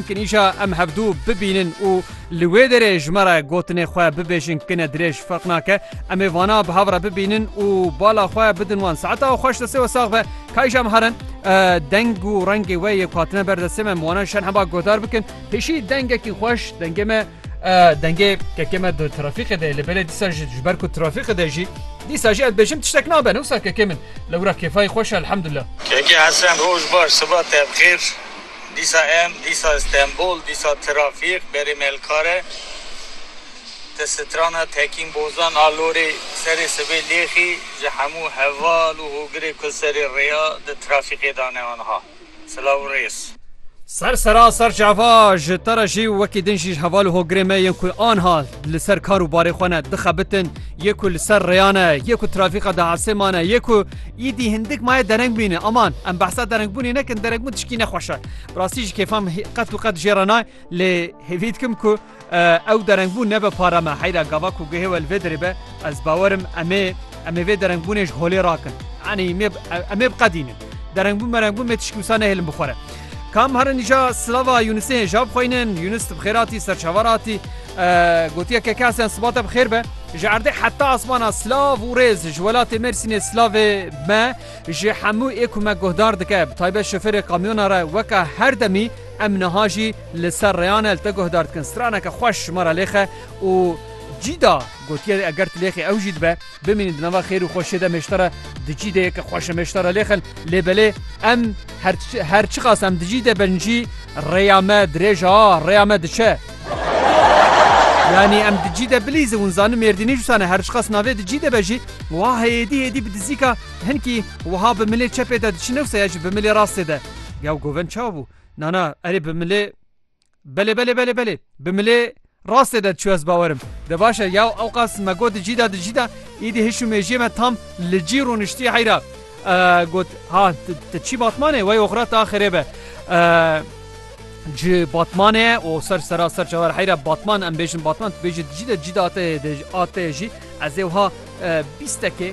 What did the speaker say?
Kinîşa em hevdû bibînin û li wê derê ji me re gotinê xwe bibêjin kine dirêj ferq nake. Em ê vana bi hev re bibînin û bala xwe bidin wan. Saeta û xweş destê we sax be. Kayîşa em herin deng û rengê we yê ku hatine ber destê me em wana şen heba guhdar bikin. Pêşî dengekî xweş dengê me dengê kekê me di trafîqê de yê lê belê dîsa jî ji ber ku trafîqê de jî dîsa jî ez dibêjim tiştek nabe ne wisa kekê min lewra kêfayî xweş e elhemdulillah. Kekê Hesen roj baş siba te bi xêr. Dîsa em, dîsa Stenbol, dîsa trafîk berê Melkare, di strana Tekîn Bozan a Lorê serê sibê lêxî ji hemû heval û hogirê ku serê rêya di trafîkê da ne aniha. Silav û rêz. Ser sera ser çava ji te re jî û wekî din jî ji heval û hogirê me yên ku aniha li ser kar û barê xwe ne dixebitin, yê ku li ser rêya ne, yê ku trafîka dihesê ma ne, yê ku Îdî hindik maye dereng bîne. Aman em behsa derengbûnê nekin derengbûn tişkî nexweş e. Bi rastî jî kêfan qet û qet jê re nay lê hêvî dikim ku ew derengbûn nebe para me heyra gava ku guhê we li vê derê be ez bawerim em ê em ê vê derengbûnê ji holê rakin. Enî em ê em ê biqedînin. Derengbûn merengbûn mê tişkî wisa nehêlin bi xwe re. Kam herin îja silava Yunusê hê ja bixweynin, Yunus ti bi xêr hatî ser çavar hatî. Gotiye ke kesiyan sibate bi xêr be. Ji erdê heta asmana silav û rêz ji welatê Mêrsînê silavê me ji hemû ê ku me guhdar dike bi taybet şofêrê kamyona re weka her demî em niha jî li ser rêyan e li te guhdar dikin straneke xweş ji me re lêxe û cîda gotiye eger tu lêxî ew jî dibe. Bimînin di nava xêr û xweşiyê de mêştera dicî de ye ke xweş e mêştera lê xil lê belê em her her çiqas em dicî de bin jî rêya me dirêj a rêya me diçe. Yanî em dicî de bilîze hûn zanin mêrdînî cusa ne her çiqas navê dicî de be jî wa hêdî hêdî bi dizîka hinkî wiha bi milê çepê de diçin ewse ya jî bi milê rastê de. Ya govend çawa bû? Nana erê bi milê Belê belê belê belê bi milê rastê de diçû ez bawer im. De baş e yaw ewqas me got di cî de di cî de îdî hişû mêjiyê me tam li cî rûniştî heyra got ha te çî batmanê wey oxira ta xirê be ji batmanê û ser sera ser çawer heyra batman em bêjin batman tu bêjî di cî de cî de atê atê jî ez ê wiha bîstekê